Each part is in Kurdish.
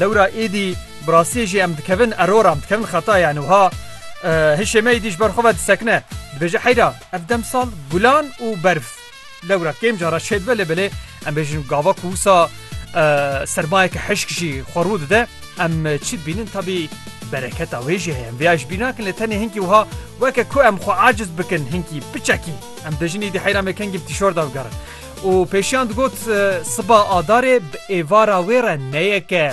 Lewra êdî bi rastiyê jî em dikevin erora, em dikevin xetaya yani wiha hişê me êdî ji ber xwe ve disekine. Dibêje heyra ev demsal gulan û berf lewra kêm cara çêdibe lê belê em bêjin gava ku wisa sermayeke hişk jî xwe rû dide em çi dibînin tabî bereketa wê jî heye em vêya ji bîr nakin lê tenê hinkî wiha weke ku em xwe aciz bikin hinkî biçekî em bêjin êdî heyra me kengî bi tîşorda bigerin. Û pêşiyan digot, Siba Adarê bi êvara wê re neyeke.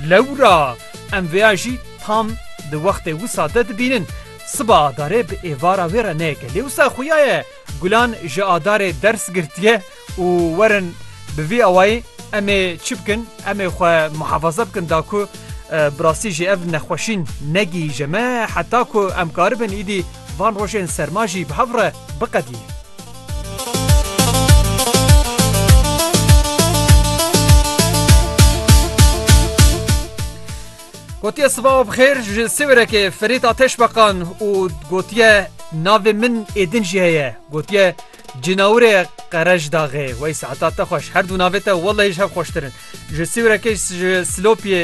Lewra em vêya jî tam di wextê wisa de dibînin. Siba Adarê bi êvara wê re neyeke. Lê wisa xuya ye gulan ji Adarê ders girtiye û werin bi vî awayî em ê çi bikin? Em ê xwe muhefaza bikin da ku bi rastî jî ev nexweşîn negihîje me heta ku em karibin îdî van rojên serma jî bi hev re biqedînin. Gotiye sibav xêr ji Siwêrekê Ferît Ateş Beqan û gotiye navê min êdin jî heye gotiye cinawirê qerej daxê wey saeta te xweş her du navê te welehî ji hev xweştirin ji Siwêrekê ji Silopiyê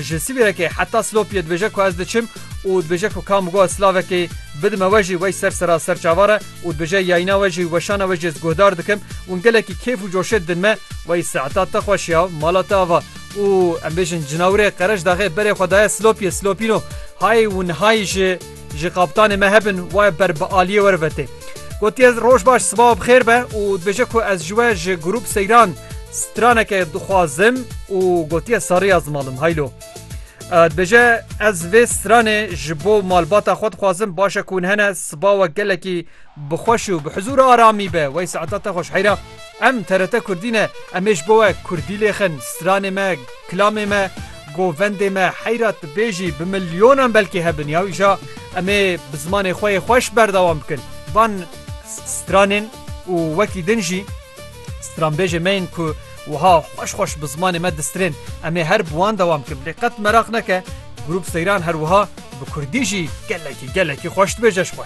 Ji Sivîrekê heta Silopiyê dibêje ku ez diçim û dibêje ku ka min got silavekê bidime we jî wey ser sera ser çavan re û dibêje yayîna we jî weşana we jî ez guhdar dikim û min gelekî kêf û coşê didin me wey seeta te xweş ya mala te ava û em bêjin cinawirê Qereşdaxê berê xwe daye Silopiyê Silopîno hayê û nihayî ji Ji kaptanê me hebin waye ber bi aliyê were vetê. Gotiye roj baş sibawa bi xêr be û dibêje ku ez ji we ji grûp seyran straneke dixwazim û gotiye serrî ya zimalim haylo. Dibêje ez vê stranê ji bo malbata xwe dixwazim baş e ku hûn hene sibawa gelekî Bi xweş û bi hizûr û aramî be wey saeta te xweş heyra. Em TRT Kurdî ne em ê ji bo we Kurdî lê xin, stranê me, kilamê me, govendê me heyra tu bê jî bi milyonan belkî hebin ya îja em ê bi zimanê xwe yê xweş berdewam bikin. Van stranên û wekî din jî stranbêjê me yên ku wiha xweş xweş bi zimanê me distirên em ê her bi wan dewam bikin. Lê qet meraq neke Grûp Seyran her wiha bi Kurdî jî gelekî gelekî xweş dibêje ji xwe.